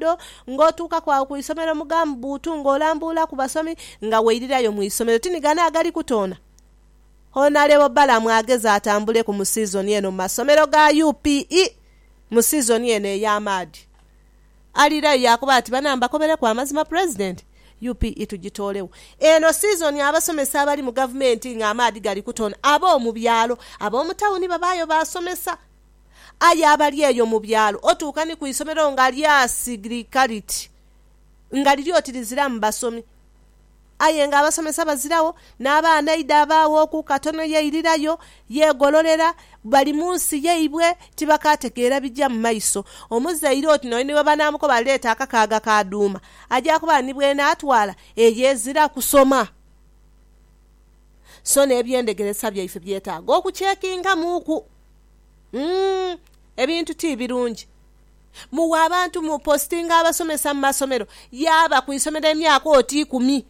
dho ng'otuukaku agho ku isomero mu gambuutu ng'olambuula ku basomi nga weirirayo mu isomero. Tinigana agali kutoona Honalebo Balaam ageze atambuleku mu sizoni eno mu masomero ga UPE mu sizoni eno ey'amaadhi. Aliirayo yaakoba ati, Bana mbakobeleku amazima Pulezidenti, UPE tugitoolegho. Eno sizoni abasomesa abali mu gavumenti ng'amaadhi gali kutoona, ab'omu byalo, ab'omu tawuni babaayo baasomesa. Aye abali eyo mu byalo, otuuka ni ku isomero nga lyasighirika liti nga liri oti liziramu basomi. Aye ng'abasomesa baziragho, n'abaana eidha abaaghoku katono yeirirayo, yeegololera, bali mu nsi yaibwe, tibakaategeera bija mu maiso. Omuzaire oti n'oyo ni bwe banaamukoba aleete akakaaga ka dhuuma, aja kuba ni bw'enaatwala eyo ezira kusoma. So n'eby'endegeresa byaife byetaaga okukyekingamuuku. Umm ebintu ti birungi. Muwa abantu mu postinga abasomesa mu masomero yaaba ku isomero emyaka oti ikumi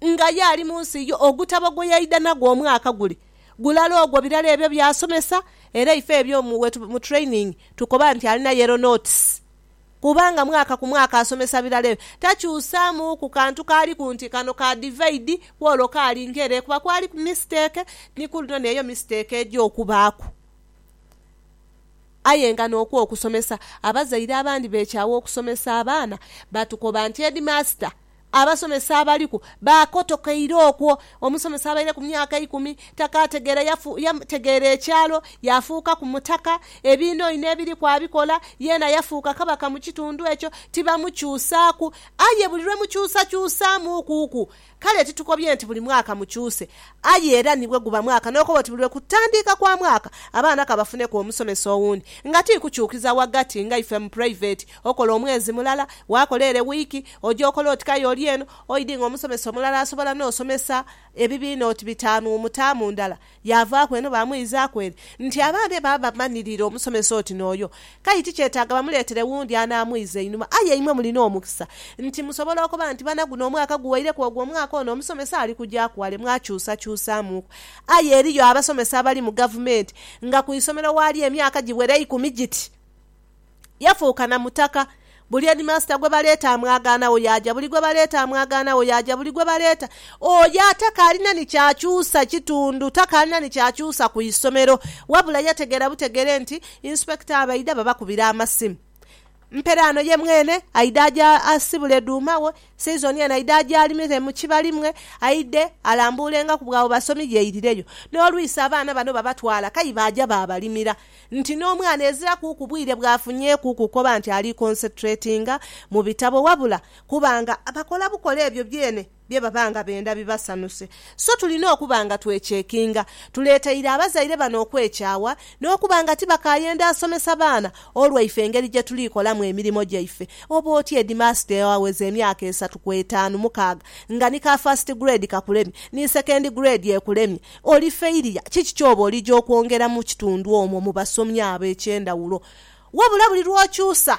nga ye ali mu nsi yo. Ogutabo gwe yaidha nagwo omwaka gule gulala ogwo birala ebyo by'asomesa era ife ebyo mu training tukoba nti alina yellow notes. Kubanga mwaka ku mwaka asomesa birala ebyo, takyusaamu ku kantu kaaliku nti kano ka divaidi, ku olwo kaali nkere, kuba kwaliku misiteeke, ni ku luno n'eyo misiteeke eja okubaaku. Aye nga n'okwo okusomesa, abazaire abandi beekyawa okusomesa abaana, batukoba nti, Heedimaasita, Abasomesa abaliku baakotokeire okwo. Omusomesa abaire ku myaka eikumi takaategeera, yategeera ekyalo, yaafuukaku mutaka, ebiinoino ebiriku abikola, yeena yafuuka kabaka mu kitundu ekyo. Tibamukyusaaku. Aye buli lwe mukyusakyusaamuukuku, kale titukobye nti buli mwaka mukyuse, aye era ni bwe guba mwaka n'okoba oti buli lwe kutandiika kwa mwaka abaana ka bafuneku omusomesa owundi nga ti kukyukiza ghagati nga ife mu puraiveti Okola omwezi mulala, waakola ere wiiki, oja okola oti k'aye oli eno, oidhi nga omusomesa omulala asobola n'osomesa ebibiina oti bitaanu mu taamu ndala. Yaavaaku eno baamwizaaku ere. Nti abaana be baba bamanhirire omusomesa oti n'oyo, k'aye tikyetaaga bamuleetere wundi anaamwiza einhuma. Aye imwe mulina omukisa nti musobola okoba nti, Bana, guno omwaka guweireku ogwo omwaka ono omusomesa ali kugyaku wale, mwakyusakyusaamuuku. Aye eriyo abasomesa abali mu gavumenti nga ku isomero waali emyaka giwera eikumi giti. Yafuuka na mutaka. Buli heedimaasita gwe baleeta amwagaanagho yaaja, buli gwe baleeta amwagaanagho yaaja, buli gwe baleeta. Oyo atakaalina ni kyakyusa kitundu, takaalina ni kyakyusa ku isomero. Wabula yategeera butegeere nti Inspector abaidha babakubira amasimu. Mperaano ye mwene aidha aje asibule dhuuma we, season eno aidha aje alimire mu kibali mwe, aidhe alambuulengaku bw'abo basomi yeeirireyo. N'olwisi abaana bano babatwala k'aye baaja baabalimira. nti n'omwana ezira kuuku bwire bw'afunyeeku kukoba nti ali concentratinga mu bitabo wabula kuba nga bakola bukola ebyo byene bye baba nga benda bibasanhuse. So tulina okuba nga twekyekinga. Tuleeteire abazaire bano okwekyawa n'okuba nga tibakaayenda asomesa baana olwaife engeri gye tuli kolamu emirimo gyaife. Oba otya hedimaasita eyaweza emyaka esatu ku etaanu mukaaga nga ni ka first grade kakulemye, ni second grade ekulemye, Oli failure. Kiki ky'oba olija okwongera mu kitundu omwo mu basomi abo eky'endhawulo? Wabula buli lw'okyusa,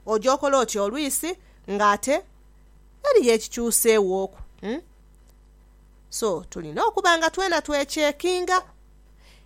oja okola otya olwisi nga ate eriyo ekikyuseewooku? So, tulina okuba nga twena twecheckinga.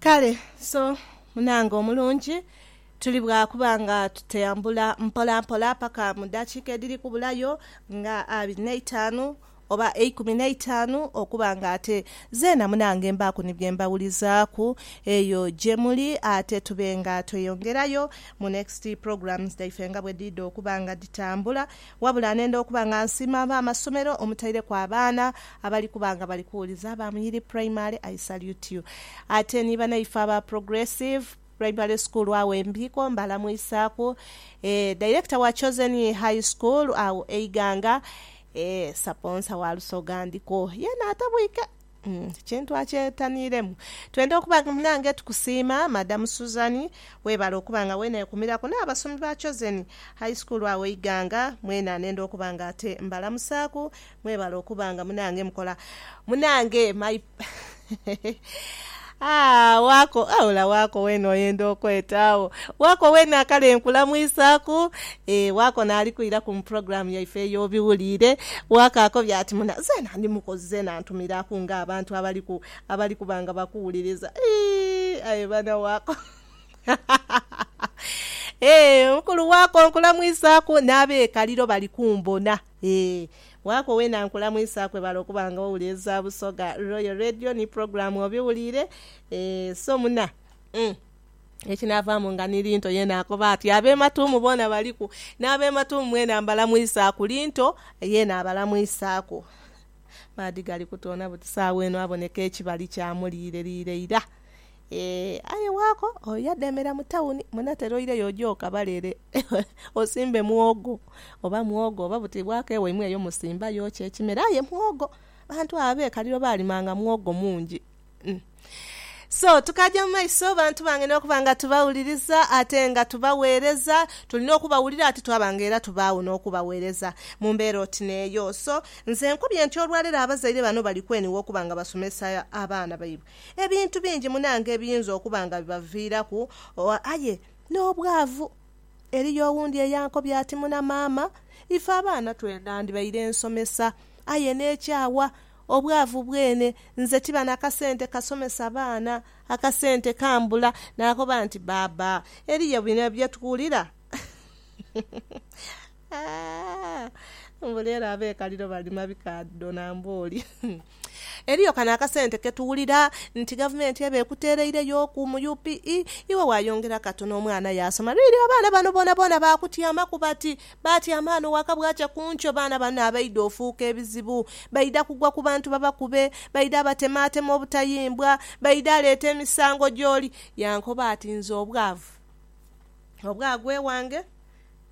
Kale so, munange omulungi, tuli bwa kuba nga tutambula mpolampola paka mu daakiika edhiri kubulayo nga abiri n'eitaanu oba eikumi n'eitaanu okuba nga ate zeena munange mbaaku ni bye mbawulizaaku eyo gye muli ate tube nga tweyongerayo mu next programs dhaife nga bwe dhidha okuba nga dhitambula Wabula nenda okuba nga nsiima ab'amasomero omutaireku abaana abali kuba nga bali kuwuliza aba Muyiri Primary, I salute you. Ate ni banaife aba Progressive Primary School agho e Mbiiko mbalamwisaaku, eeh, Director wa Chosen High School agho e Iganga, eeh, Saponsa wa Lusoga Ndiko yeena atabwike. Kintu akyetaniremu. Twenda okuba nga munange tukusiima madam Suzan webale okuba nga wenekumiraku n'abasomi ba Chosen high school agho Iganga mwena nenda okuba nga ate mbalamusaku mwebale okuba nga munange mukola munange my Aa, wako, aula wako weene oyenda okweta agho. Wako weene akale nkulamwisaaku. Ee, wako naali kwiraku mu pulogulaamu yaife ey'obiwuliire. Wako akobye ati, Muna, zeena ndi mukozi, zeena ntumiraku nga abantu abali ku, abali kuba nga bakuwuliriza. Ii, aye bana wako. Ee, mukulu wako nkulamwisaaku, n'ab'ekaliro bali kumbona. Ee, waako weena nkulamwisaku webale okuba nga owuliriza Busoga Royal Radio ni pulogulaamu obiwuliire. Ee, so muna, umm, ekinaavaamu nga ni Linto yeena akoba ati. Ab'e Matuumu boona baliku. N'ab'e Matuumu mweena mbalamwisaaku. Linto yeena abalamwisaaku. Maadhi gali kutoona buti saagha eno aboneka ekibali kya muliireriire ira. Ee, aye waako oyo yadheemera mu tawuni, munatera oireyo oje okabale ere osimbe muwogo, oba muwogo, oba buti bwaako ewaimwe eyo musimbayo ki ekimera. Aye muwogo, abantu abo ab'e Kaliro baalimanga muwogo mungi. So, tukaja mu maiso, bantu bange, n'okuba nga tubawuliriza ate nga tubagheereza. Tulina okubawulira ate twaba nga era tubaagho n'okubagheereza mu mbeera oti n'eyo. So, nze nkubye nti olwaleero abazaire bano bali kwenigha okuba nga basomesa abaana baibwe. Ebintu bingi munange ebiyinza okuba nga bibaviiraku, aye n'obwavu. Eriyo owundi eyankobye ati, Muna maama, ife abaana twenandibaire nsomesa, aye n'ekyawa obwavu bwene nze tiba na kasente kasomesa baana, akasente kambula. Naakoba nti, Baaba, eriyo bino bye tuwulira mbu leero abeekaliro balima bikaadho na mbooli. Eriyo kano akasente ke tuwulira nti Gavumenti eba ekuteereireyoku mu UPE, iwe waayongera katono omwana yaasoma. Really abaana bano boonaboona baakutyamaku bati, baatyama ghano waka bwakya ku nkyo baana banno abaidha ofuuka ebizibu. Baidha kugwa ku bantu babakube, baidha abatemaatema obutayimbwa, baidha aleeta emisango gy'oli. Yankoba ati, Nze obwavu obwagwa ewange.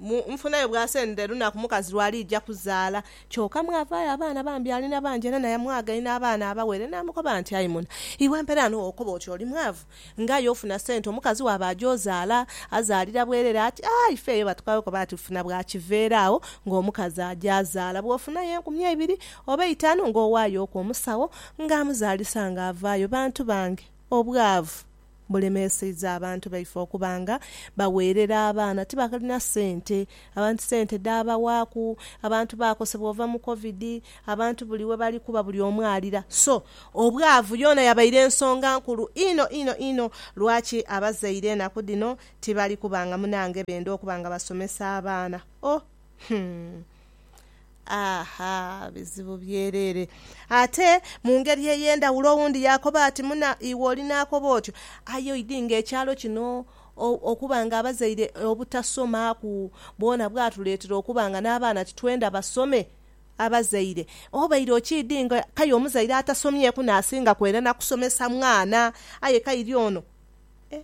Mu nfuna yo bw'asendera lunaku mukazi lw'aliija kuzaala. Kyoka mwavaayo abaana bambi alina bangi era naye mwagaine abaana abawere. Naamukoba nti, Ayi muna, iwe mpera ghano wokoba oti oli mwavu? Ng'aye ofuna sente omukazi wo aba aja ozaala, azaalira bwerere ati, Ah, ife eyo batukagho koba ati funa bwa kiveera agho ng'omukazi aja azaala. Bw'ofunayo enkumi eibiri oba eitaanu ng'owaayoku omusawo ng'amuzaalisa ng'avaayo. Bantu bange, obwavu! bulemeeseiza abantu baife okuba nga bagheerera abaana tibalina sente, abantu sente dhaabawaaku, abantu baakosebwa ova mu Covid, abantu buli webali kuba buli omu alira. So, obwavu yoona yabaire nsonga nkulu inho inho inho lwaki abazaire enaku dhino tibali kuba nga munange benda okuba nga basomesa abaana. Oh, humm! Aha, bizibu byereere! Ate mu ngeri ey'endhawulo owundi yaakoba ati, Muna, iwe oli n'akoba otyo, aye oidhi ng'ekyalo kino okuba ng'abazaire obutasomaaku bwona bwatuleetera okuba nga n'abaana titwenda basome. Abazaire, obaire okiidhi nga k'aye omuzaire atasomyeku n'asinga kwenda na kusomesa mwana, aye k'airi ono, eh!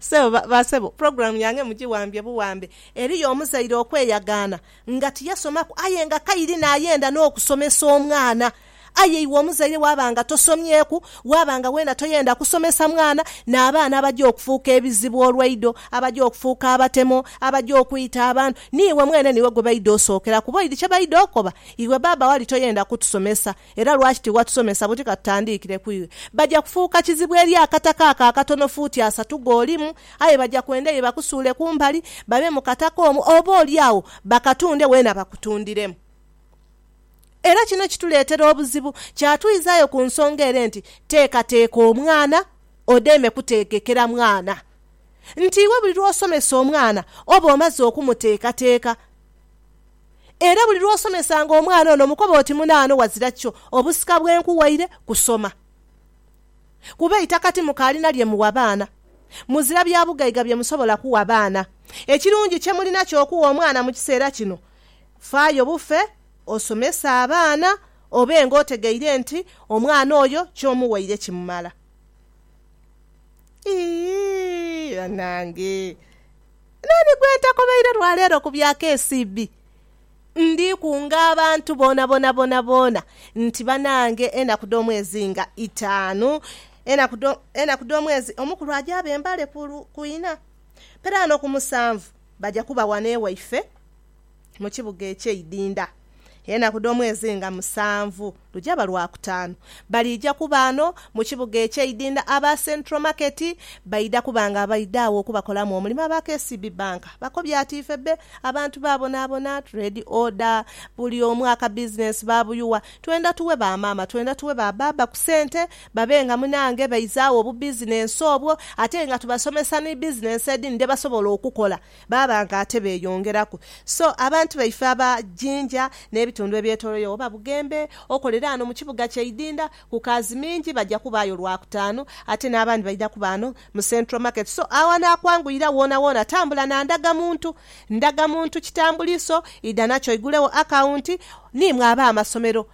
Ssebo ba, ba ssebo, pulogulaamu yange mugiwambye buwambe. Eriyo omuzaire okweyagaana nga tiyasomaku aye nga kairi n'ayenda n'okusomesa omwana. Aye iwe omuzaire waaba nga tosomyeku, waaba nga weena toyenda kusomesa mwana, n'abaana abaja okufuuka ebizibu olwaido, abaja okufuuka abatemo, abaja okwita abantu, niiwe mwene niiwe gwe baidha osookera kuba oidhi kye baidha okoba, iwe baaba wali toyenda kutusomesa. Era lwaki tiwatusomesa buti ka tutandiikire ku iwe? Baja kufuuka kizibu eri akataka ako akatono fuuti asatu g'olimu. Aye baja kwenda iwe bakusuule ku mbali, babe mu kataka omwo, oboolyawo bakatunde weena bakutundiremu. Era kino kituleetera obuzibu. Kyatwizaayo ku nsonga ere nti, Teekateeka omwana, odeme kuteegekera mwana. Nti iwe buli lw'osomesa omwana oba omaze okumuteekateeka. Era buli lw'osomesanga omwana ono mukobe oti munaano wazira kyo obusika bwe nkuwaire kusoma. Kuba eitaka ti mukaalina lye muwa baana. Muzira bya bugaiga bye musobola kuwa baana. Ekirungi kye mulina ky'okuwa omwana mu kiseera kino, faayo bufe osomese abaana obe ng'otegeire nti omwana oyo ky'omuwaire kimumala. Iihh banange! Nani gwentakobeire lwa leero ku bya KCB? Ndi kunga abantu bonabona bonabona nti banange enaku dhomwezi nga itaanu enaku dhomwezi omukulu aja abe mbale ku ina peraano ku musanvu baja kuba wano ewaife mu kibuga eky'eidinda enaku dh'omwezi nga musanvu lujaba Lwakutaanu. Baliija kuba ano mu kibuga eky'eidinda aba Central Market baidha kuba nga baidha agho okubakolamu omulimu aba KCB Bank. Bakobye ati, Ife be abantu babonaabona, trade order, buli omu akabizinensi baabuyuwa. Twenda tuwe ba maama, twenda tuwe ba baaba ku sente babe nga munange baizaagho obubizinensi obwo ate nga tubasomesa ni bizinensi edhindi dhebasobola okukola. Baba nga ate beeyongeraku. So, abantu baife aba Jinja n'ebitundu ebyetoloiregho oba Bugembe, okolera ghano mu kibuga kye Idinda, ku kaazi mingi baja kubaayo Lwakutaanu, ate n'abandi baidha kuba ghano mu Central Market. So, agho anaakwanguyira woonawoona tambula na ndagamuntu. Ndagamuntu kitambuliiso, idha nakyo oigulegho akawunti, niimwe ab'amasomero.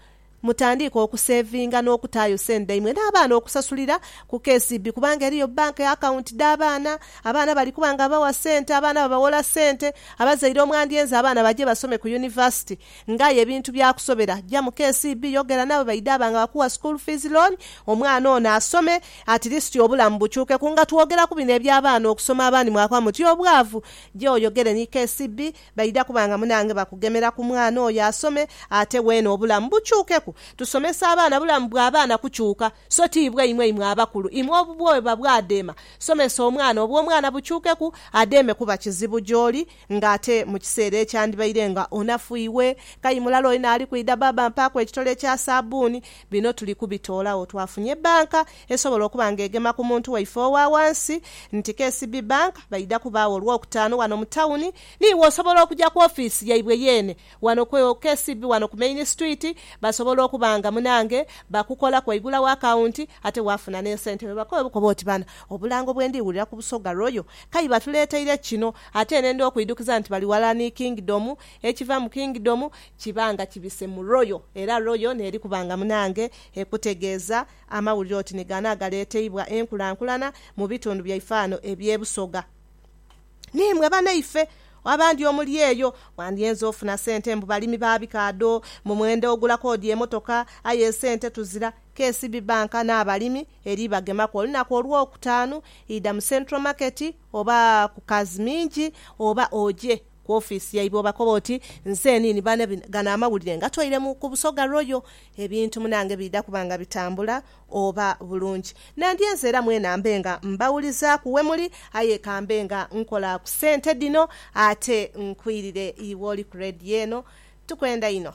Mutandiike okuseevinga n'okutaayo sente dhaimwe n'abaana okusasulira ku KCB kubanga eriyo bank akawunti dh'abaana. Abaana bali kuba nga bawa sente, abaana babawola sente. Abazaire omwandyenze abaana baje basome ku yunivasite nga aye ebintu byakusobera, ja mu KCB yogera nabo baidha ba nga bakuwa school fees loan omwana ono asome at least obulamu bukyukeku. Nga twogera ku bino eby'abaana okusoma abandi mwakoba muti obwavu, je oyogere ni KCB. Baidha kuba nga munange bakugemera ku mwana oyo asome ate weene obulamu bukyukeku. Tusomesa abaana bulamu bwa baana kukyuka so ti bwaimwe imwe abakulu. Imwe obubwoba bwadeema somesa omwana obwomwana bukyukeku adeeme kuba kizibu gyoli nga ate mu kiseera ekyandibaire nga onafu iwe kayi mulala oyo naali kwidha baaba mpaaku ekitole kya saabbuuni bino tuli kubitoolagho twafunye bbanka Esobola okuba nga egema ku muntu waife owa ghansi nti KCB Bank baidha kubaagho Olwokutaanu ghano mu tawuni. Niiwe osobola okuja ku ofiisi yaibwe yeene ghano ku KCB ghano ku Main Street. Basobola okuba nga munaange bakukolaku waigulawo akawunti ate waafuna n'esente. Webakobe bukobe oti, Bana, obulango bwe ndi wulira ku Busoga Royal kayi batuleeteire kino ate nenda okwidhukiza nti bali ghalala ni Kingdom. Ekiva mu Kingdom kiba nga kibise mu Royal era Royal n'eri kuba nga munaange ekutegeeza. Amawulire oti ni gano agaleeteibwa enkulankulana mu bitundu byaife ano eby'e Busoga. N'imwe banaife abandi omuli eyo, mwandyenze ofuna sente mbu balimi ba bikaadho, mbu mwenda ogula koodi emotoka aye esente tuzira. KCB Bank n'abalimi eri bagemaku olunaku Olwokutaanu, idha mu Central Market oba ku Kazimingi oba ogye. Ku ofiisi yaibwe obakoba oti, Nzenini bane gano amawulire ngatoire mu ku Busoga Royal. Ebintu munange biidha kuba nga bitambula oba bulungi. Nandyenze era mwena mbe nga mbawulizaaku we muli, aye ka mbe nga nkola ku sente dhino ate nkwirire iwe oli ku Radio eno. Tukwenda inho.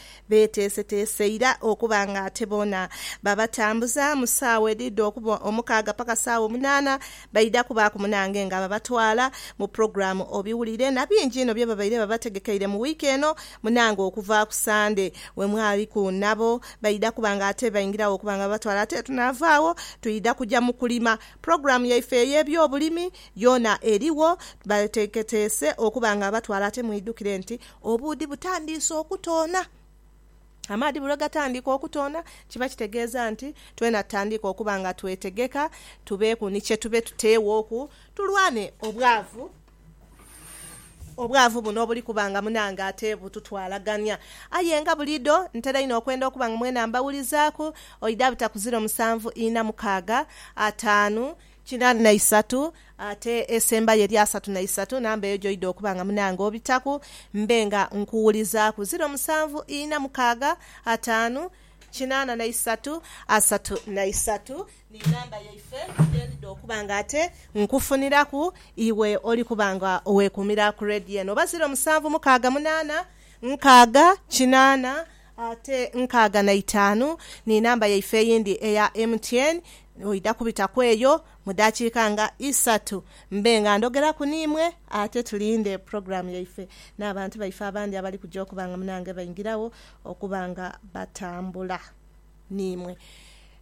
Beeteeseteese ira okuba nga ate boona babatambuza mu saawa edhidha okuba omukaaga paka saawa omunaana. Baidha kubaaku munange nga babatwala mu pulogulaamu obiwulire na bingi inho bye babaire babategekeire mu wiiki eno munange okuva ku Sande we mwaliku nabo. Baidha kuba nga ate baingiragho okuba nga babatwala ate tunaava agho twidha kuja mu kulima. Pulogulaamu yaife ey'ebyobulimi yoona erigho, bateeketeese okuba nga batwala ate mwidhukire nti Obuudhi butandiise okutoona. Amaadhi bwe gatandika okutoona kiba kitegeeza nti twena tutandike okuba nga twetegeka tubeeku ni kye tube tuteewooku tulwane obwavu. Obwavu buno obuli kuba nga munange ate bututwalagania. Aye nga buliidho ntera inho okwenda okuba nga mwena mbawulizaaku. Oidhabita ku ziro musanvu ina mukaaga, ataanu, kinani na isatu, ate esembayo eri asatu na isatu, namba eyo gy'oidha okuba nga munange obitaku, mbe nga nkuwulizaaku. Ziro musanvu ina mukaaga ataanu kinaana na isatu asatu na isatu, ni namba yaife ye ndidha okuba nga ate nkufuniraku iwe oli kuba nga owekuumira ku rediyo eno, oba ziro musanvu mukaaga munaana nkaaga kinaana Ate nkaaga na itaanu ni namba yaife eyindi eya MTN. Oidha kubita ku eyo mu daakiika nga isatu mbe nga ndhogeraku n'imwe ate tulinde pulogulaamu yaife n'abantu baife abandi abali kuja okuba nga munange baingiragho okuba nga batambula. n'imwe.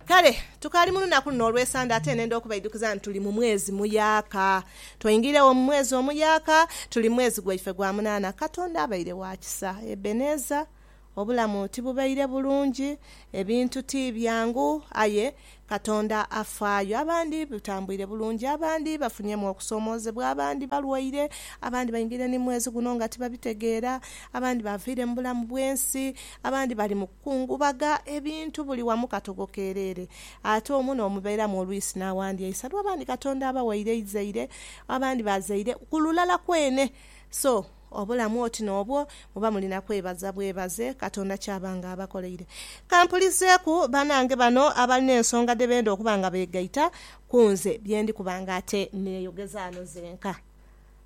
Kale tukaali mu lunaku luno olw'esande, ate nenda okubaidhukiza nti tuli mu mwezi muyaaka. Twaingiiregho mu mwezi omuyaaka, tuli mu mwezi gwaife gwa munaana. Katonda abaire wa kisa. Ebeneza. Obulamu tibubaire bulungi, ebintu ti byangu, aye Katonda afaayo. Abandi bitambuire bulungi, abandi bafunyemu okusoomoozebwa, abandi balwaire, abandi baingiire ni mu mwezi guno nga tibabitegeera, abandi baaviire mu bulamu bw'ensi, abandi bali mu. Kungubaga ebintu buli wamu katogo kereere, ate omu n'omubeeramu olwisi n'awandyaisa lwa bandi Katonda abawaire eizaire, abandi bazaire ku lulala kwene. So obulamu oti n'obwo muba mulina kwebaza bwebaze Katonda ky'aba nga abakoleire. Ka mpulizeeku banange bano abalina ensonga dhe benda okuba nga beegaita ku nze bye ndi kuba nga ate neeyogeza ghano zenka.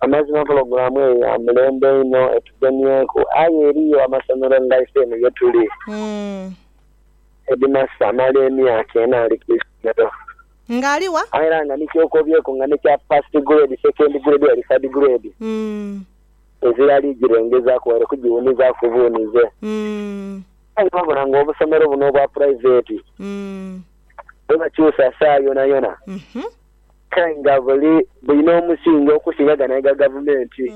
Amazima pulogulaamu eyo ya mulembe inho, etugemyeku. Aye eriyo amasomero nga ife eno ye tuli, hedimasita amala emyaka ena ali ku isomero. Nga ali wa? Aye era nga ni kyokobyeku nga n'ekya First Grade, Second Grade oba Third Grade tezirali girengezaaku waire kugiwunizaku buunize. Aye wabula nga obusomero buno obwa puraiveti bwebakyusa saa yonayona. Kae nga buli bulina omusingi okusinga gano aga gavumenti.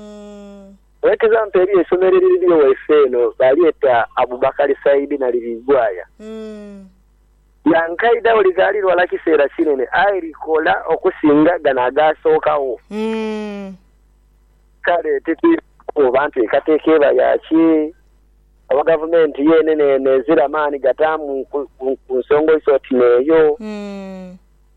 For example eriyo eisomero eririyo waife eno balyeta Abubakar Said Nalibigwaya. Lya nkaidha awo likaali lwala kiseera kinene aye likola okusinga gano agaasookagho. Kale titwidha kukoba nti enkateeka eba ya ki oba gavumenti yenene eno ezira maani gataamu ku nsonga oiso oti n'eyo.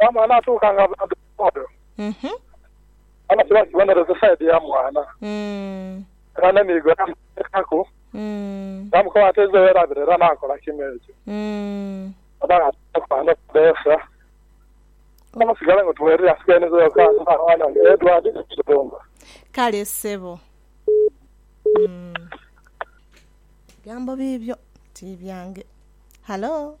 Omwana atuuka nga bodaboda oba kiba kibonerezo saidi ya mwana. Era ne miigo yagiteekaku yaamukoba ati eiza werabire era naakola kimu ekyo. Oba nga tayina kwano kudeesa aye musigale nga tuwerere asigainezeyo ku ani nga mwana we Edward Kirumba. Kale ssebo. Bigambo biibyo ti byange. Halo.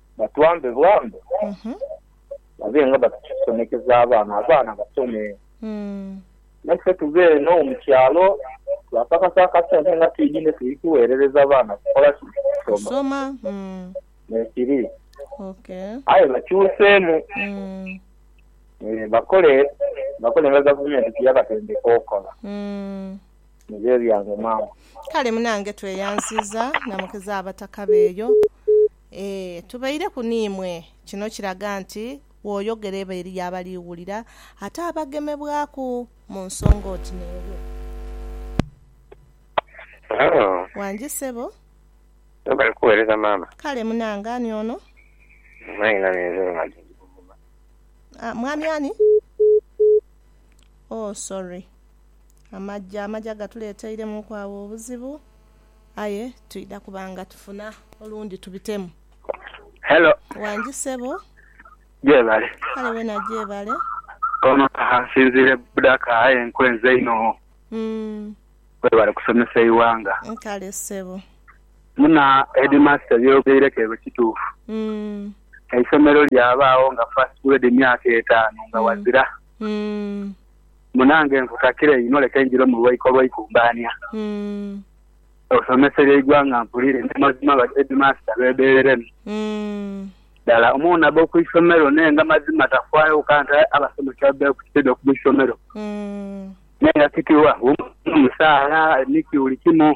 Batuwambe buwambe babe nga batusomekeza abaana, abaana basome naife tube eno mu kyalo twakakasa akasente nga twidhi ni tuli kuwerereza baana kukola ki? Kusoma. Bwekiri. Aye bakyuseemu bakole bakole nga gavumenti byeyabatendeka okola. Nibyo ebyange maama. Kale munange tweyanziza na mukiza abataka beeyo. Ee, tubaireku n'imwe. Kino kiraga nti bw'oyogera eba eriyo abali wulira ate abagemebwaku mu nsonga oti n'eyo. Halo. Wangi ssebo. Webale kuweereza maama. Kale munange ani ono? Mwami nami nze Ronald ndi Buvuma. Ah, mwami ani? Oh sorry. Amaja, amaja gatuleeteiremuuku agho obuzibu. aye twidha kuba nga tufuna olundi tubitemu. Hello. Wangi sebo. Gyebale. Kale wena gyebale. Ono kaha nsinzire budaka aye nkwenza inho. Webale kusomesa eiwanga. Kale sebo. Muna headmaster ebyogeireku ebyo kituufu. Eisomero lyabaagho nga first grade myaka etaanu nga wazira. Munange nkukakire inho leke njire mu lwaiko lwa ikumbaania osomeserie eighwanga mpulire nti mazima ba headmaster bebereremu dala. Omwana aba ku isomero naye nga mazima tafaayo oka nti aye abasomesa babeere ku side oku isomero naye nga kitibwa wo musaala niki buli kimu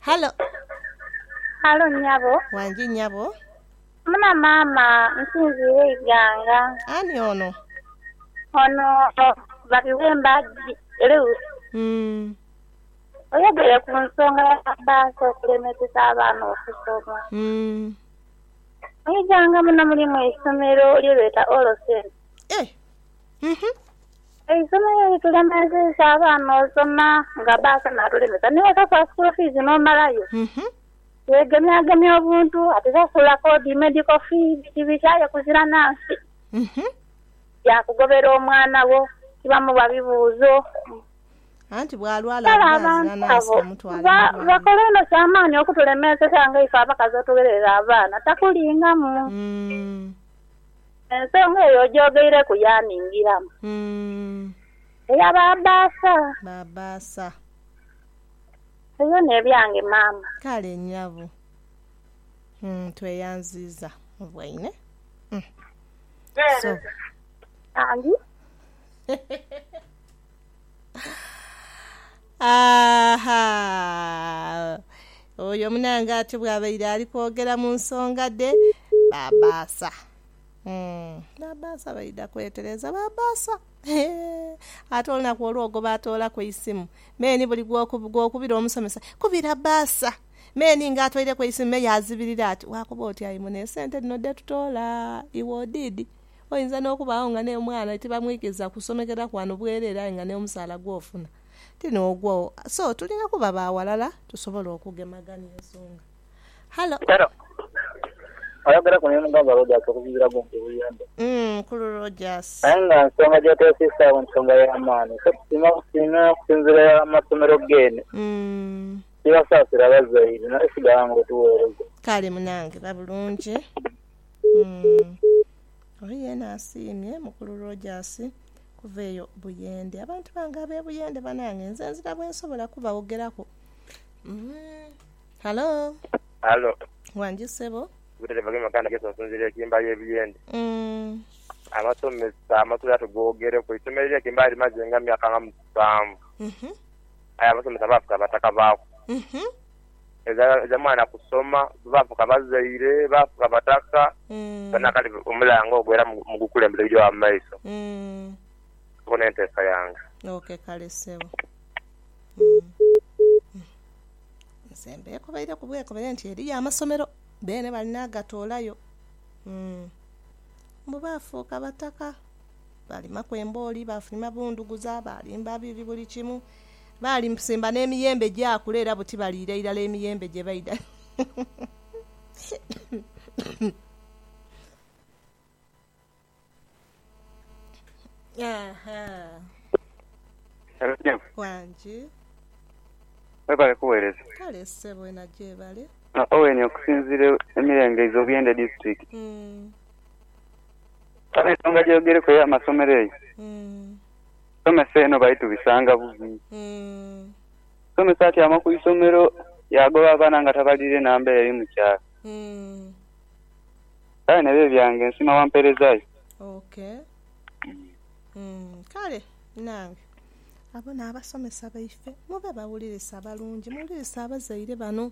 Halo. Halo nyabo. Wangi nyabo. Muna maama nsinziire iganga. Ani ono? Ono Babiwemba Luke. Uhmm. Oyogere ku nsonga ya bbaasi okulemesesa abaana okusoma. Uhmm. Mu iganga muno mulimu eisomero lye beeta All Saints. Eh! Eisomo lyo litulemezeisa abaana osoma nga baasoma atuleme sa ni wosasula school fees nomalayo. Yegemyagemya obuntu ati sasula kodi, medical fee biki biki aye kuzira na nsi ya kugobera omwana wo tibamuwa bibuuzo. Anti bwalwala Kale avume azira abantu na nsi abo bamutwale ba, mu bwami. bakola inho kyamaani okutulemeeseza nga ife abakazi otugherera abaana. Takulingamu. Ensonga eyo ojoogeireku yaaningiramu. Eya ba baasa. Ba baasa. Ebyo n'ebyange maama. Kale nyabo. Tweyanziiza mu bwaine. Mpeereza bambi. Aah! Oyo munange ati bwabaire ali kwogera mu nsonga dhe babaasa. Uhmm babaasa baidha kwetereza babaasa eeh ate olunaku olwo gwe baatoolaku eisimu me ni buli gw'okubira omusomesa kubira baasa me ni nga atoireku eisimu me yaazibirira ati waakoba oti ayi mune esente dhino dhe tutoola iwe odiidhi? Oyinza n'okubaagho nga n'omwana tibamwikiriza kusomekera kwano bwereere aye nga n'omusaala gw'ofuna ti n'ogwo. So, tulina kuba ba ghalala tusobole okugemagania ensonga. Hallo? Hallo? Oyogereku ni mugagga Rogers okusinziira gho nti Buyende. Umm Mukulu Rogers. Aye nga nsonga gy'otwesiisaagho nsonga ya maani. Ffe tusiima busiimi okusinziira irala mu masomero geene. Umm. Tibasaasira bazaire naye sighala ng'otuweereza. Kale munange, ba bulungi. Oli yeena asiimye Mukulu Rogers kuva eyo Buyende. Abantu bange ab'e Buyende banange nze nzira bwensobola kubawogeraku. Halo. Halo. Wangi ssebo. Butete Bagema Maganda Yesu nsinziira e Kimbayi e Buyende. Amasomesa amasomero ago tugoogereku. Eisomero ly'e Kimbayi limaze nga myaka nga musanvu aye abasomesa baafe ka bataka baaku. edhamwana kusoma baafuuka bazaire, baafuuka bataka era nakati omulanga ogwo era mugukulembeza ebigya wano mu maiso. Okwo n'enteesa yange. Ok kale ssebo. Nze mbeekobaireku bwekobere nti eriyo amasomero beene bali n'agatoolayo mbu baafuuka bataka, baalimaku embooli, baafulima bundhuguza, baalimba biibi buli kimu. Baalimusimba n'emiyembe gyakula era buti baliira irala emiyembe gye baidha. Hello Jane. Wangi. Webale kuwereza. Kale ssebo ena gyebale. Ono Owen okusinzira emirembe izo Buyende district. Kale ensonga gyogereku eya masomero eyo. Somesa eno baitu bisanga bubi. Omusomesa atyama ku isomero yaagoba abaana nga tabaliire namba eri mu kyalo. Kale nebyo ebyange nsiima wamperezayo. Ok kale nange abo n'abasomesa baife mube bawulirisa balungi muwulirisa abazaire bano.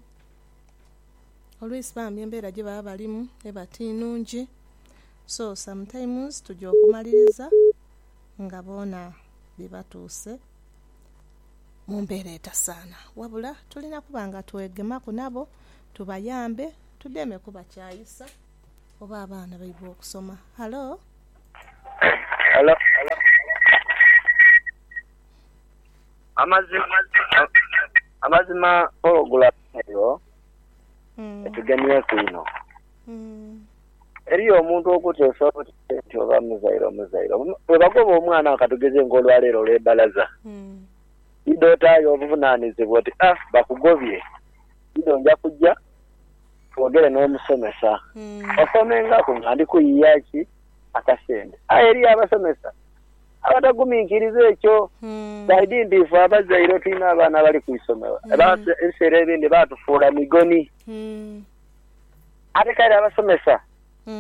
Olwisi bambi embera gyebaba balimu eba ti nnungi so sometimes tuja okumaliriza nga boona bibatuuse mu mbeera etasaana. Wabula tulina kuba nga twegemaku nabo tubayambe tudeme kubakyayisa oba abaana baibwe okusoma. Halo? Halo? Amazima, amazima pulogulamu eyo etugemyeku inho. Eriyo omuntu okuteesa obuteesi nti oba muzaire omuzaire bwebagoba omwana awo katugeze nga olwaleero olwe bbalaza idho otaayo obuvunanizibwa oti a bakugobye idho nja kuja twogere n'omusomesa osomengaku nga ndi kuyiya ki akasente aye eriyo abasomesa abataguminkiriza ekyo saidi nti ife abazaire tulina abaana abali ku isomero ebiseera ebindi batufuula migoni. Ate kale abasomesa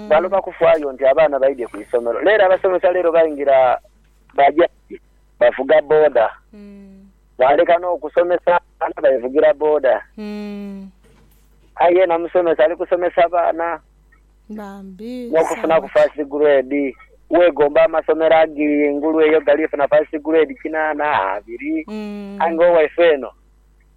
baloba kufaayo nti abaana baidhie ku isomero. Leero abasomesa leero baingira baja ere bavuga boda, baaleka n'okusomesa abaana bevugira boda. Aye yena musomesa ali kusomesa baana n'okufunaku first grade. Weegomba amasomero age engulu eyo gali funa first grade kinaana, abiri aye nga owaife eno.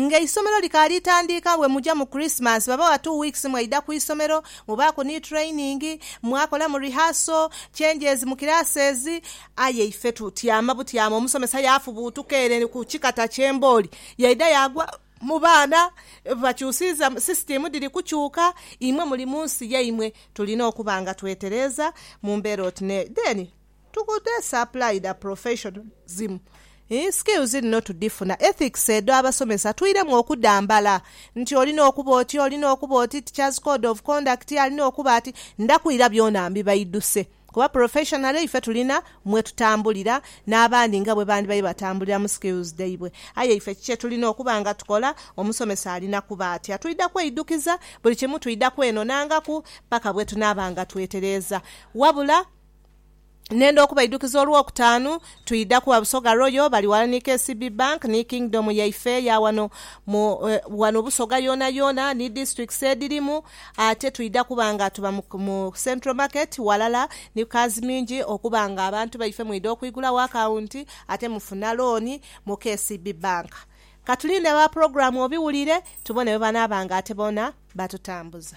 Nga eisomero likaali tandiika bwe muja mu Christmas babawa two weeks mwaidha ku isomero, mubaaku ni training, mwakolamu rehearsal, changes mu classes. Aye ife tutyama butyama omusomesa yaafubuutuka ere ku kikata ky'embooli yaidha yaagwa mu baana. Bakyusiiza system dhiri kukyuka, imwe muli mu nsi yaimwe. Tulina okuba nga twetereeza mu mbeera oti n'eti then To could this apply the professionalism in skills dhino tudhifuna, ethics edho abasomesa twiremu okudhambala nti olina okuba oti, olina okuba oti, teachers code of conduct alina okuba ati, ndhakwira byona mbibaidhuse kuba professionally ife tulina mwetutambulira n'abandi nga bwebandibaire batambulira mu skills dhaibwe aye ife ki kyetulina okuba nga tukola, omusomesa alina kuba atya, twidha kweidhukiza buli kimu, twidha kwenonangaku paka bwetunaaba nga twetereeza wabula. Nhenda okubaidukiza Olwokutaanu twidha kuwa Busoga Royal bali wala ni KCB Bank ni Kingdom yaife eya wano mu wano Busoga yoonayoona ni districts edhirimu ate twidha kuba nga tuba mu Central Market walala ni Kazmingi okuba nga abantu baife mwidha okwigulawo akawunti ate mufuna looni mu KCB Bank. Katulinde ba Program obiwulire tubone bwebanaaba nga ate boona batutambuza.